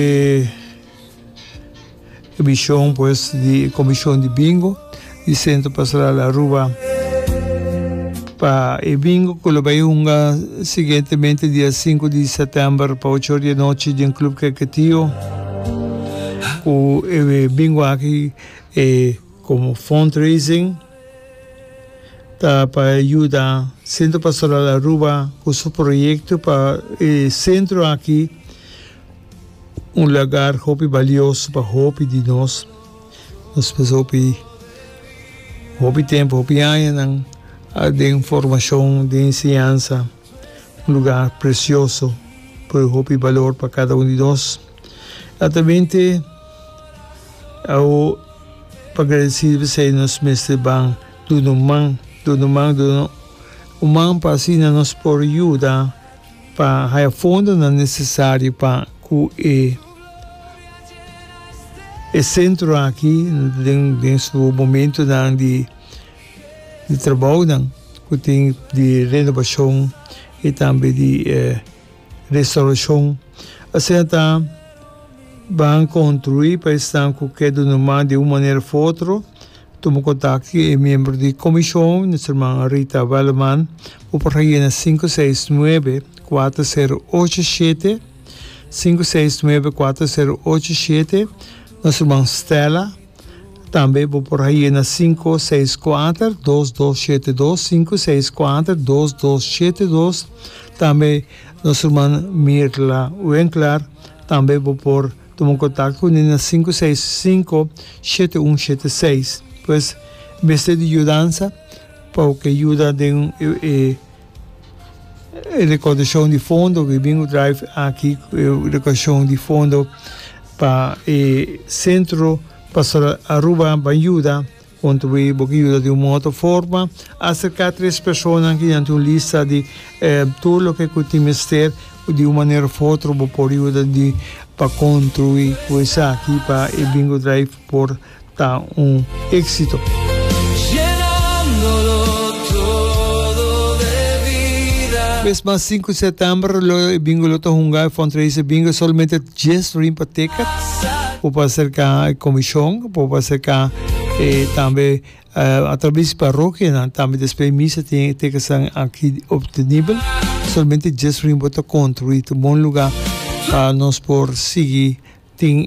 E ebishon pues di e komishon di bingo di Sentro Pastoral Aruba pa e bingo ku lo bai hunga siguientemente dia sinku di sètèmber pa ocho or di anochi den Club Keketio ku e bingo aki e komo fundraising ta pa yuda Sentro Pastoral Aruba ku su proyekto pa e sentro aki. Un lagar hopi balioso pa hopi di nos. Nos pasa hopi, hopi tempu, hopi añanan den formashon, den enseñansa. Un lugar presioso ku e hopi balor pa kada un di nos. Santamente awo pa gradesi p'esei nos mester ban duna un man, duna un man, duna un man pa asina nos por yuda Pa haya fondonan nesesario pa cu e e centro aki den den su momentonan di di trabounan cu tin di renobacion y tambe di restauracion asina ta ban construi pa esnan cu ke do no mas di un manera of otro Tuma kontak ku e miembro di komishon, nos herman Rita Welleman, bo por hayena sinku seis nuebe kuater sero ocho shete, sinku seis nuebe kuater sero ocho shete, nos herman Stella, tambe bo por hayena sinku seis kuater dos dos shete dos, sinku seis kuater dos dos shete dos, tambe nos herman Mirla Winkler, tambe bo por. Tuma un kontakto ku Nina sinku seis sinku shete un shete seis. Pues mester di yudansa pa bo ke yuda den e rekordashon di fondo ku e bin ku drive aki e rekordashon di fondo pa e sentro Pastoral Aruba ban yuda. Kontribuí bo ku yuda di un mon òtro forma. Aserká tres personanan ku dianti un lista di tur loke ku e tin mester. Di un manera òf otro bo por yuda di pa kontribuí ku esaki pa e Bingo Drive por ta un éksito. Mes mas sinku di setember lo e Bingo lo ta hunga e Fundraiser Bingo. Solamente. Djes rin pa ticket por pa acerca e comision por pa acerca e tambe uh, atraves parokianan tambe despues misa tin ticketsan aki obtenibel solamente djes rin bo ta construi tu bon lugar pa nos por sigui tin